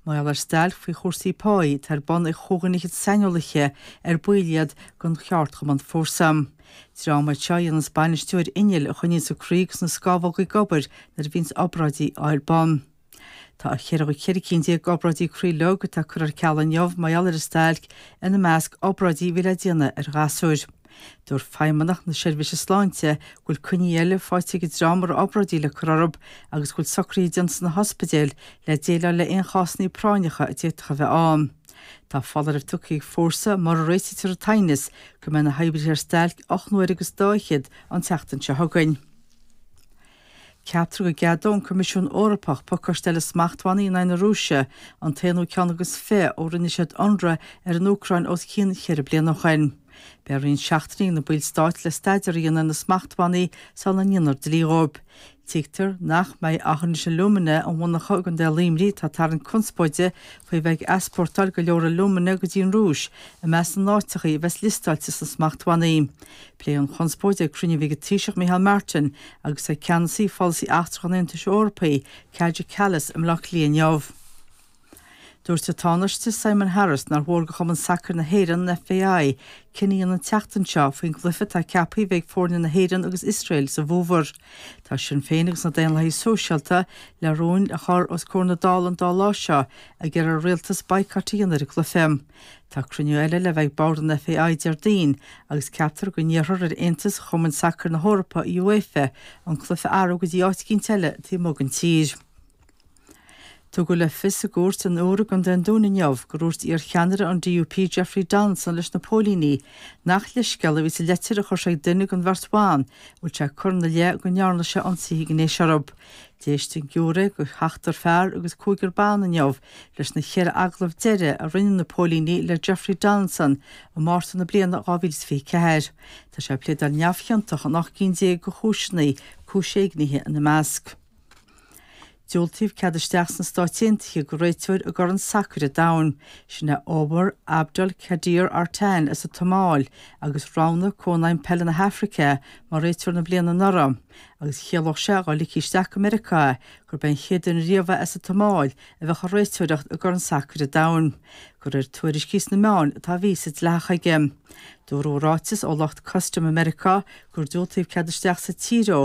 Mar gheall ar stailc faoi chúrsaí páí atá ar bun ag cúig cinn fhichead saineolaithe ar baill iad den cheardchumann Fórsa. Dream iad seo a dhéanas bainistiú ar innill a choinníonns an croí agus na scámhóga ag obair nuair a bhíonns obráidí ar bun. Tá cheithre cheithre cinn déag d'obráidí croí leo curtha ar ceal inniu mar gheall ar an stailc, ina measc, obráidí a bhí le déanamh ar ghasúir. Dúirt Feidhmeannach na Seirbhíse Sláinte go bhfuil coinní eile faighte ag an dream a raibh obráidí le cur orthu agus go bhfuil socruithe déanta sna hospidéil le déileáil le aon chásannaí práinneacha a d'fhéadfadh a bheith ann. Tá foláireamh tugtha ag Fórsa, mura réiteofar an t-aighneas, go mbeidh na hoibrithe ar stailc ocht n-uaire agus daichead an tseachtain seo chugainn. Ceaptar go gceadóidh an Coimisiún Eorpach pacáiste eile smachtbhannaí in aghaidh na Rúise, an t-aonú ceann agus fiche ó rinne siad ionradh ar an Úcráin os cionn cheithre bliana ó shin. Beidh roinnt seachtainí ag na ballstáit le staidéar a dhéanamh ar na smachtbhannaí sula ndéanfar dlí dhóibh. Tuigtear nach mbeidh Aughinish Alumina an mhonarcha i gContae Luimnigh atá ag tarraingt conspóide faoi bheith ag easpórtáil go leor alúmana go dtí an Rúis i measc na n-áiteachaí a bheas liostáilte sna smachtbhannaí. Pléadh an chonspóid ag cruinniú a bhí ag an Taoiseach Micheál Martin agus ag Ceannasaí Pholasaí Eachtrach an Aontais Eorpaigh, Kaja Kallas, i mBleá Cliath inniu. Dúirt an Tánaiste Simon Harris nár mhór do Chumann Sacair na hÉireann, an FAI, cinneadh a dhéanamh an tseachtain seo faoin gcluiche atá ceaptha a bheith ag foirne na hÉireann agus Iosrael sa bhfómhar. Tá Sinn Féin agus na Daonlathaigh Sóisialta le rúin a chur os comhair na Dála an dá lá seo ag iarraidh ar an Rialtas baghcat a dhéanamh ar an gcluiche. Tá cruinniú eile le bheith ag bord an FAI Déardaoin agus ceaptar go n-iarrfar ar Aontas Chumainn Sacair na hEorpa, UEFA, an cluiche a athrú go dtí áit eicínt eile taobh amuigh den tír. Tugadh le fios i gcúirt an Iúir i gContae an Dúin inniu gur dhúirt iar-cheannaire an DUP Jeffrey Donaldson leis na póilíní nach leithscéal a bhí sa leitir a chuir sé ag duine den bheirt bhan a bhfuil sé curtha ina leith go ndearna sé ionsaithe gnéis orthu. D'éist an giúiré de sheachtar fear agus cúigear ban inniu. Leis na ceithre agallamh deiridh a rinne na póilíní le Jeffrey Donaldson i Márta na bliana 2024, tá sé ag pléadáil neamhchiontach in ocht gcinn déag de chúiseanna, cúis éignithe ina measc. Diúltaíodh cead isteach sna Stáit Aontaithe do réiteoir i gCorn Sacair an Domhain, sin é Omar Abdulkadir Artan as an tSomáil, agus roghnaigh Cónaidhm Peile na hAfraice é mar réiteoir na bliana anuraidh, agus chiallódh sé dá ligfí isteach go Meiriceá é gurb é an chéad duine riamh as an tSomáil a bheadh ag réiteoireacht i gCorn Sacair an Domhain, de réir tuairiscí sna meáin tá víosa dleathach aige. Dúradh i ráiteas ó lucht custaim i Meiriceá gur diúltaíodh cead isteach sa tír dó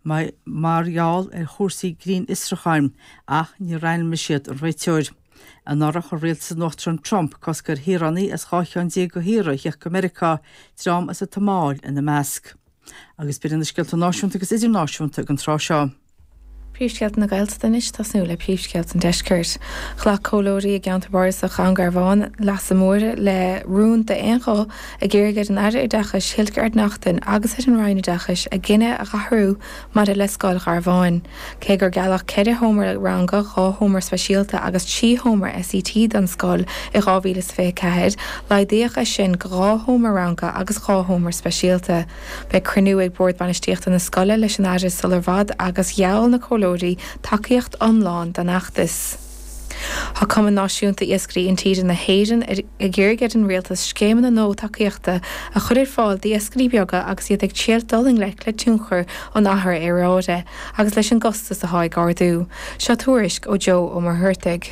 mar gheall ar chúrsaí grinnfhiosrúcháin, ach níor ainmnigh siad an réiteoir. Anuraidh, chuir rialtas an Uachtaráin Trump cosc ar shaoránaigh as dhá cheann déag de thíortha a theacht go Meiriceá, dream as an tSomáil ina measc. Agus b'iad na scéalta náisiúnta agus idirnáisiúnta ag an tráth seo. Príomhscéalta na Gaeltachta anois, tosnú le príomhscéalta an Deiscirt. Ghlac comhairleoirí i gceantar Bardasach Dhún Garbhán Leasa Móire le rún d'aon ghuth ag iarraidh ar an Aire Oideachais Hildegarde Naughton agus ar an Roinn Oideachais a gcinneadh a dh'athrú maidir le Scoil Gharbháin. Cé gur gealladh ceithre sheomra ranga, dhá sheomra speisialta agus trí sheomra SET don scoil i 2024, laghdaíodh é sin go dhá sheomra ranga agus dhá sheomra speisialta. Beidh cruinniú ag Bord Bainistíochta na scoile leis an Aire sular bhfad agus gheall na comhairleoirí tacaíocht iomlán don fheachtas. Tá Cumann Náisiúnta Iascairí Intíre na hÉireann ag iarraidh ar an Rialtas scéimeanna nua tacaíochta a chur ar fáil d'iascairí beaga agus iad ag triail dul i ngleic le tionchar an athrú aeráide agus leis an gcostas atá ag ardú. Seo tuairisc ó Joe Ó Muircheartaigh.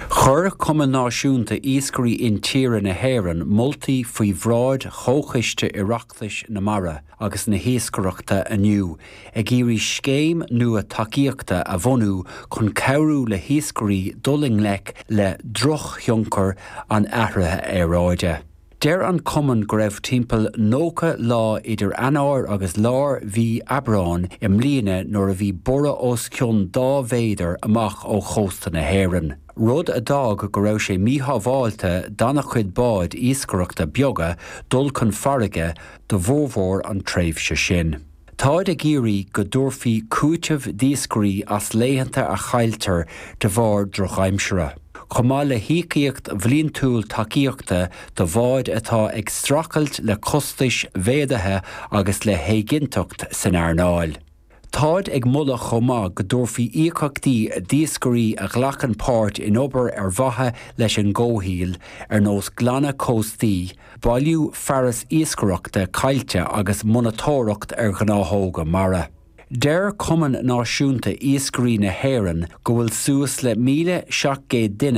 Chuir Cumann Náisiúnta Iascairí Intíre na hÉireann moltaí faoi bhráid Chomhchiste Oireachtais na Mara, agus na hIascaireachta inniu ag iarraidh scéim nua tacaíochta a bhunú chun cabhrú le hiascairí dul i ngleic le drochthionchar an athraithe aeráide. Deir an cumann go raibh timpeall 90 lá idir Eanáir agus lár mhí Aibreáin i mbliana nuair a bhí borradh os cionn dhá mhéadar amach ó chósta na hÉireann, rud a d'fhág go raibh sé míshábháilte d'an-chuid báid iascaireachta beaga dul chun farraige do bhformhór an tréimhse sin. Táid ag iarraidh go dtabharfaí cúiteamh d'iascairí as laethanta a chailltear de bharr drochaimsire, chomh maith le híocaíocht bhliantúil tacaíochta do bháid atá ag streachailt le costais mhéadaithe agus le héiginnteacht san earnáil. Táid ag moladh chomh maith go dtabharfaí íocaíochtaí d'iascairí a ghlacann páirt in obair ar mhaithe leis an gcomhshaol, ar nós glanadh cóstaí, bailiú fearas iascaireachta caillte agus monatóireacht ar ghnáthóga mara. Deir Cumann Náisiúnta Iascairí na hÉireann go bhfuil suas le 1,700 duine